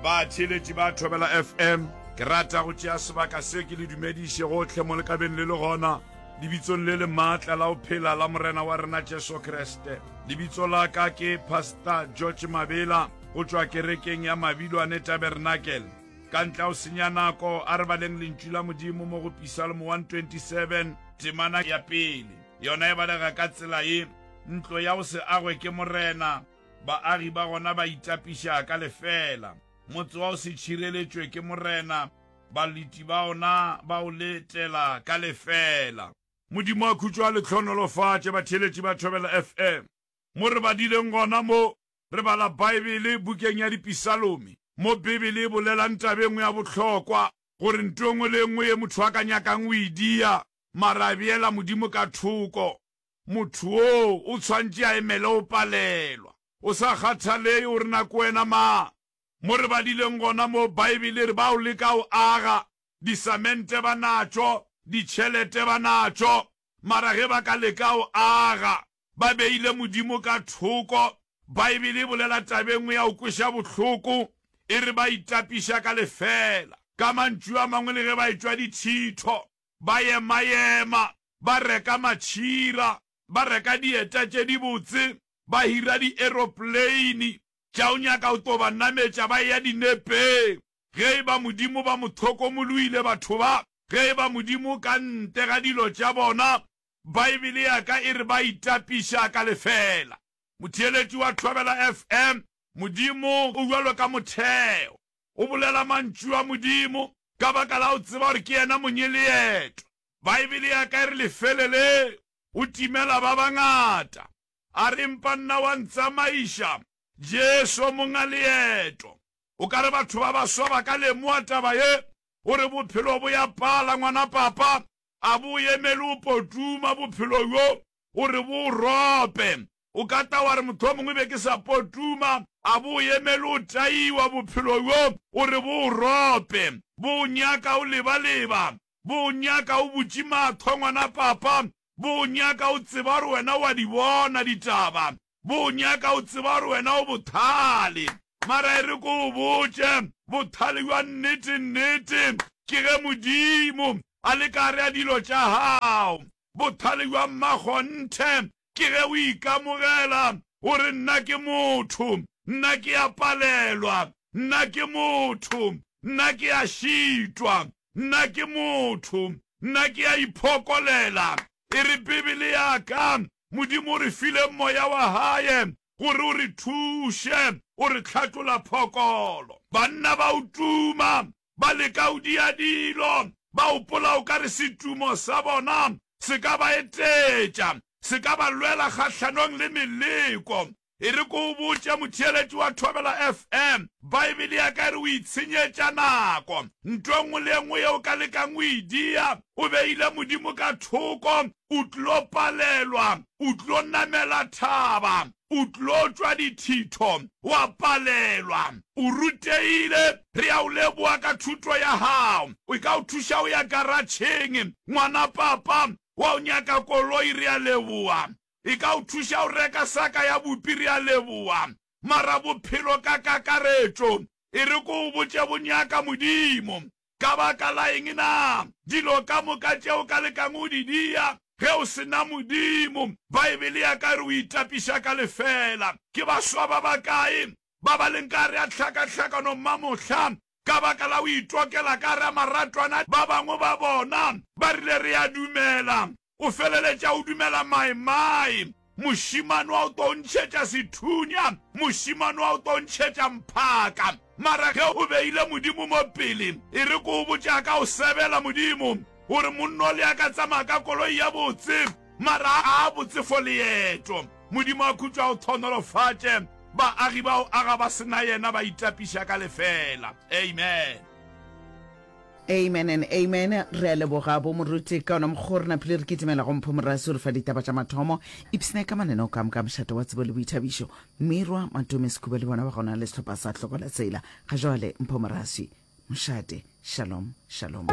Batheeletši ba Thobela FM, ke rata go tšea sebaka se ke le dumediše gohle mo le ka beng le le gona, lebitsong le le maatla la go phela la Morena wa rena Jesu Kriste. Lebitso la ka ke Pastor George Mabela go tšwa kerekeng ya Mabilwane Tabernacle. Ka ntle ga go senya nako, a re baleng Lentšu la Modimo mo go Pisalmo 127, temana ya pele. Yona e balega ka tsela ye, Ntlo ya go se agwe ke Morena. Baagi ba gona ba itapiša ka lefeela. Motse wa o se tšhireletšwe ke Morena, balweti ba ona ba o letela ka lefeela. Modimo a khutšo a le hlohonolofatše, batheeletši ba Thobela FM. Mo re badileng gona mo, re bala Baebele bukeng ya Dipisalomi, mo Bibele e bolelang taba e nngwe ya bohlokwa, gore nto e nngwe le e nngwe ye motho a ka nyakang o e dia, mara a beela Modimo ka thoko. Motho woo o tshwantše a emele go palelwa, go sa kgathalege gore na ke wena mang. Mo re badileng gona moo, Baebele e re bao leka go aga, disamente ba natšo, ditšhelete ba natšo, mara ge ba ka leka go aga ba beile Modimo ka thoko, Baebele e bolela taba e nngwe ya go kweša bohloko, e re ba itapiša ka lefeela. Ka mantšu a mangwe, le ge ba etšwa dithitho, ba yemayema, ba reka matšhira, ba reka dieta tše dibotse, ba hira dieroplane tša go nyaka go tlo ba nametša ba eya dinepeng. Ge e ba Modimo ba mo hlokomoloile batho ba, ge e ba Modimo ka ntle ga dilo tša bona, Baebele ya ka e re ba itapiša ka lefeela. Motheeletši wa Thobela FM, Modimo o bjalo ka motheo. O bolela Mantšu a Modimo ka baka la go tseba gore ke yena Monyeleetwa. Baebele ya ka e re lefele leo o timela ba bangata. A re, Empa nna wa ntsamaiša, Jesu, o monga leeto. O ka re batho ba baswa ba ka lemoga taba ye, o re bophelo bo ya pala, ngwana papa, a bo o emele o potuma bophelo bjo, o re bo o rope. O ka tla wa re, Mohlomongwe be ke sa potuma. A bo o emele o taiwa, bophelo bjo o re bo o rope, bo o nyaka o lebaleba, bo o nyaka o butše mahlo, ngwana papa, bo o nyaka o tseba gore wena o a di bona ditaba, bo o nyaka o tseba gore wena o bothale. Mara e re ke o botše, bothale bja nnete-nnete ke ge Modimo a le ka gare ga dilo tša gago. Bothale bja mmakgonthe Ke ge o ikamogela o re, Nna ke motho, nna ke a palelwa, nna ke motho, nna ke a šitwa, nna ke motho, nna ke a iphokolela. E re Bibele ya ka, Modimo o re file Moya wa Hae gore o re thuše, o re hlatlola phokolo. Banna ba o tuma, ba leka go dia dilo, ba gopola o ka re setumo sa bona se ka ba etetša, se ka ba lwela kgahlanong le meleko. E re ke o botše, motheeletši wa Thobela FM, Baebele ya ka e re o itshenyetša nako. Ntho e nngwe le e nngwe yeo o ka lekang go e dia, o beile Modimo ka thoko, o tlo palelwa, o tlo namela thaba, o tlo tšwa dithitho, wa palelwa. O rutegile, re a o leboga ka thuto ya gago. E ka o thuša o ya karatšheng. Ngwana papa wa o nyaka koloi, re a leboga. E ka o thuša o reka saka ya bupi, re a leboga. Mara bophelo ka kakaretšo, e re ko o botše bo nyaka Modimo. Ka baka la eng na dilo ka moka tše o ka lekago go di dia ge o se na Modimo? Baebele ya ka e re o itapiša ka lefeela. Ke baswa ba bakae ba ba leng ka gare ga tlhakatlhakano mmamohla ka baka la go itokela ka gare ga maratwana? Ba bangwe ba bona ba rile, Re a dumela o feleletša o dumela maimai, mošemane wa o tlo ntšhetša sethunya, mošemane wa o tlo ntšhetša mphaka. Mara ge o beile Modimo mo pele, e re ko o botša ka o sebela Modimo, o re monna o le ya ka tsamaya ka koloi ya botse, mara a a botse for leeto. Modimo a khutšo a o thonolofatše, baagi ba o aga ba sena yena ba itapiša ka lefeela. Amen. Amen and amen. Re a leboga bo moruti ka ona mokgwa o re naphile re kitimela go Mpho Morasi o re fa ditaba tša mathomo. Ipsne ka manene o kam ka mošate wa tsebo le boithabišo. Mmirwa Matome Sekhuba le bona ba gona le sehlopha sa Hlokola Tsela. Ga joale Mpho Morasi. Mošate. Shalom. Shalom.